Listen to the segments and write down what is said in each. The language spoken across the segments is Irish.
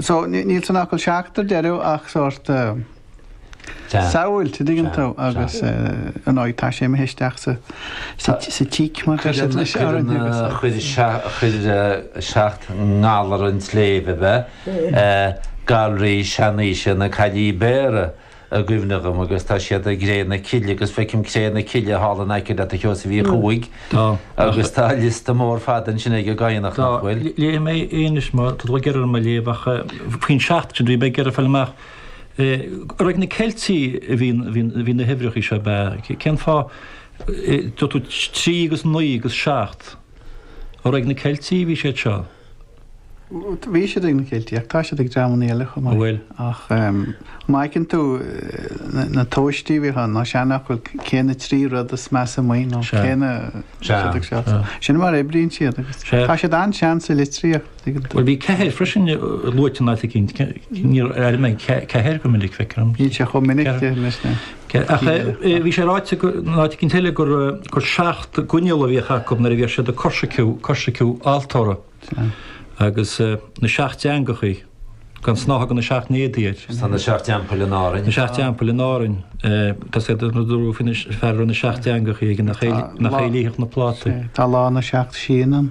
So níl san fhocal seacht ar deireadh ach sórt samhailt, dtuigeann tú, agus ar ndóigh tá sé imithe isteach sa tíc mar atá sé anois. Chuir seacht ngalar an tsléibhe, Galraí Seanaoise na Caillí Béara. i gcuimhne dhom agus tá siad i gCré na Cille agus feicim Cré na Cille thall in aice leat a Sheosaimh Uí Chuaig agus tá liosta mór fada ansin ag an gCadhnach, nach bhfuil? Léifidh mé é anois má tá tú ag iarraidh orm a léamh ach faoin seacht sin bhí mé ag iarraidh fáil amach ar ag na Ceiltigh a bhí bhí na huimhreachaí seo ab ea? Cén fáth a dúirt tú trí agus naoi agus seacht? Ar ag na Ceiltigh a bhí siad seo? Bhí siad ag na Ceiltigh ach tá siad ag dreamannaí eile chomh maith. An bhfuil? Ach má fheiceann tú na tóistí a bhíodh ann, na seanfhocail, cé na trí rud is measa amuigh nó cé na siad ag seasamh. Sin mar a oibríonn siad agus tá siad an-sean sa litríocht, tuigeann tú. Bhuel, bhí ceathair freisin luaite in áit eicínt. Níor airigh mé ceathair go minic, feicim. Níl sé chomh minic anois, na. Bhí sé ráite i gceann eile gur seacht gcoinneal a bhíodh acu nuair a bhíodh siad ag coisriciú altóra agus na seacht dteangachaí, gan snáithe de na seacht n-éadaí air. Tá na seacht dteampaill in Árainn. Na seacht dteampaill in Árainn. Tá séard a dúradh faoin bhfear a raibh na seacht dteangachaí aige nach é a líodh na plátaí. Tá lá na seacht síon ann.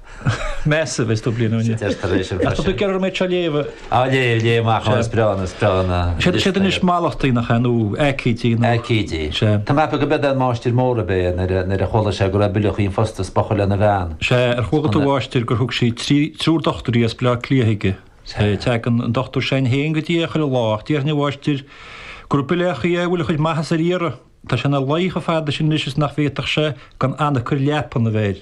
Massive is do bliain ó shin. Tar éis an bhreise. Tá tú ag iarraidh orm é seo a léamh. Á léamh, léamh amach amach, is breá na, is breá na. Seo iad anois mallachtaí nach ea, nó aicídí nó. Aicídí. Sea. Tá mé ag ceapadh go mba é an Máistir Mór ab ea nuair a, nuair a chuala sé go raibh Bileachaí an Phosta is bochar lena bhean. Sea, ar chuala tú a Mháistir gur thug sí trí, triúr dochtúirí as Bleá Cliath aige. Sea, teagann an dochtúir s'againn féin go dtí é chuile lá, ach déarfainn a mháistir go raibh Bileachaí, é a bhfuil a chuid maitheasa ar iarraidh. Tá sé ina luí chomh fada sin anois is nach bhféadfadh sé gan anacair leapan a bheith air.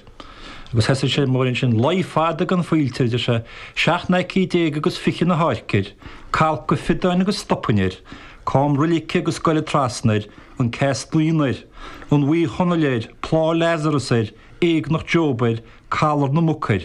Agus thosaigh sé mar ansin, luí fada gan faoilte air, a deir sé, seacht n-aicíd déag agus fiche na hÁirce air, calcadh fiodáin agus stopainn air, cam roilige agus goile trasna air, an ceas naíon air, an Bhuí Chonaill air, plá Lazarus air, éagnach Job air, calar na muc air.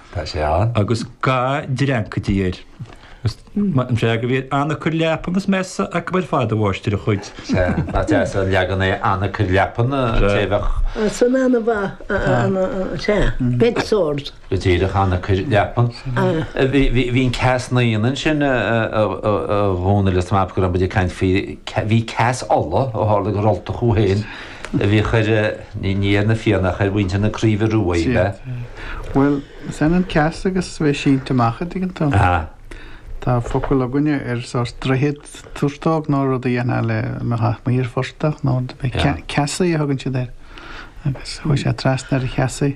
Tá sé ann. Agus ga dreancaidí air. Is maith an freagra a bhí air, anacair leapan is measa acu ar fad a mháistir a chuid. Sea, nach deas an leagan é anacair leapan, té a bheadh. Sin ana mhaith, ana, sea, bedsore. Go díreach, anacair leapan. Bhí an ceas naíon ansin, a Dhónaill, is mé ag ceapadh go raibh muid ag caint faoi, bhí Ceas Uladh ó tharla gur Ultach thú fhéin. a bhí a chuir ní ar na Fianna ach ar mhuintir na Craoibhe Rua í le. Bhuel, is ionann ceas agus bheith sínte amach, an dtuigeann tú. Aha. Tá focal againne ar sórt droichead, turtóg nó rud a dhéanfá lena chaitheamh amuigh ar phortach nó rud. Ceasaí a thugann siad air. Agus chuaigh sé trasna ar an cheasaí.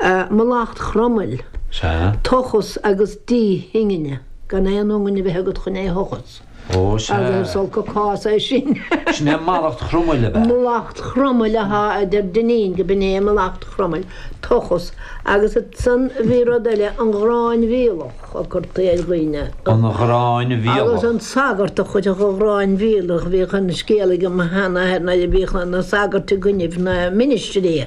Mallacht Chromail, Sea. Tochas agus díth ingne gan aon iongain a bheith agat chun é thochas. Ó sea. Agus is olc cás é sin. Sin é mallacht Chromail ab ea? Mallacht Chromail, aha, a deir Dinneen, go b'in é mallacht Chromail, tochas. Agus ansan bhí rud eile, an ghráin mhíolach a curtaí ar dhaoine. An ghráin mhíolach. Agus an sagart a chuirfeadh an ghráin mhíolach, bhíodh an scéal aige mo shean-athair nuair a bhíodh na sagairt i gcoinnibh na ministrí,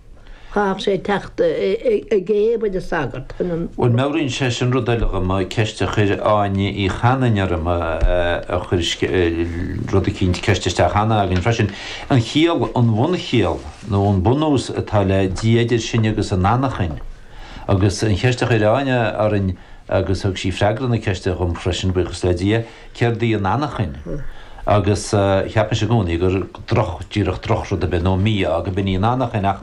Chaithfeadh sé teacht i gcéibh ag an sagart chun an. Bhuel, meabhraíonn sé sin rud eile dhom, ceist a chuir Áine Uí Chanainn orm, a chuir rud eicínt, ceist isteach cheana againn freisin. An chiall, an bhunchiall, nó an bunús atá le Dia idir sinn agus an anachain. Agus an cheist a chuir Áine orainn, agus thug sí freagra na ceiste dhom freisin, buíochas le Dia, céard í an anachain? Agus cheapas i gcónaí gur droch, díreach drochrud ar bith, nó mí-ádh, go b'in í an anachain, ach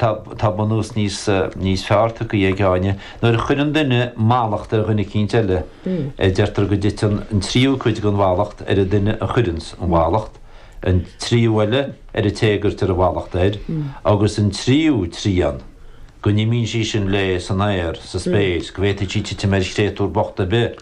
tá, tá bunús níos, níos fearr-tacaí ag Áine. Nuair a chuireann duine mallacht ar dhuine eicínt eile, deirtear go dtiteann an tríú cuid den mhallacht ar an duine a chuireanns an mhallacht, an tríú eile ar an té a gcuirtear an mhallacht air, agus an tríú trian go n-imíonn sí sin léi san aer, sa spéir, go bhféadfadh sí titim ar chréatúr bocht ar bith.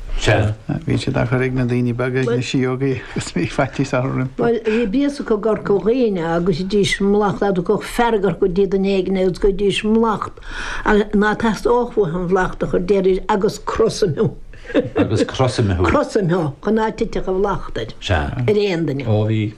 Sea. Bhíonn siad á chur ag na daoine beaga, ag na síógaí, agus bhí faitíos orthu roimpi. Bhuel, bhí béas acu i gCorca Dhuibhne agus deiridís mallacht dá dtagadh fearg orthu i dtaobh duine éigin agus go ndeiridís mallacht ná teastódh uathu an mhallacht a chur deiridís agus crosaim thú. Agus crosaim thú. Crosaim thú chun ná titfeadh an mhallacht air, ar aon duine. Sea. Ó bhí.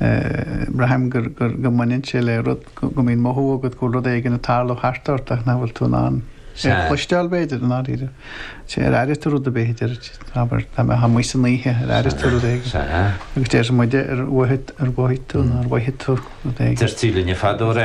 Braithim go mbaineann sé le rud, go mbíonn mothú agat go bhfuil rud éigin ag tarlú thart ort ach nach bhfuil tú in ann é a chloisteáil, b'fhéidir, i ndáiríre. Sea, ar airigh tú rud ar bith, a déarfadh muid, abair, dá mbeifeá amuigh san oíche, ar airigh tú rud éigin? Sea. Agus déarfadh muide, ar mhothaigh tú, nó ar mhothaigh tú rud éigin? Deirtí linn fadó, ar airigh tú rud éigin?